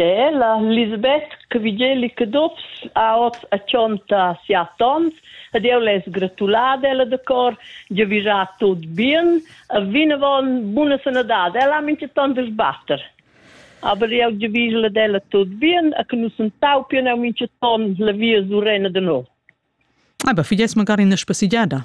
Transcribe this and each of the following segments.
Ella, Lisbeth Cavigeli Caduffs ha oz a tschonta siat onns ed jeu less gratular ella de cor, giavischar tut bien e vinavon buna sanadad. Ella ha mintgaton de sbatter. Aber jeu giavischel ad ella tut bien e che nus entaupien eu mintgaton la via surena de no. Aber figlies magari ina spassigada.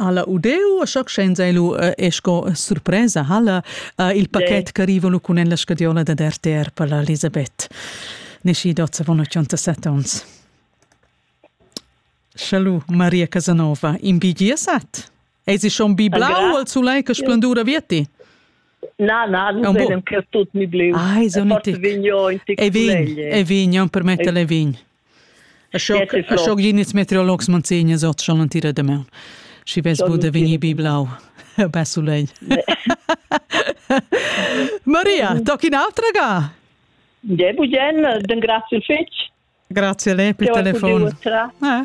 Alla Udeu, scienza e lu e sco surpresa halla il paquet che arrivano con la scadiola da RTR per la Elisabeth. Nesci dozza von 87 ons. Salut Maria Casanova, in BGSat? Ei si schon biblau al sulei che splendura vietti? Na, na, non venem che tut mi blu. Ah, è un tic. E vin, e vin, per mettere le vin. Ins meteorologs manzegnas ot schon an tira demaun. Schi vess bu da vegnir biblau bessulegn. Maria, toc in autra ga? De bugen, den grazie fetg. Grazie a lei per il telefon. Eh?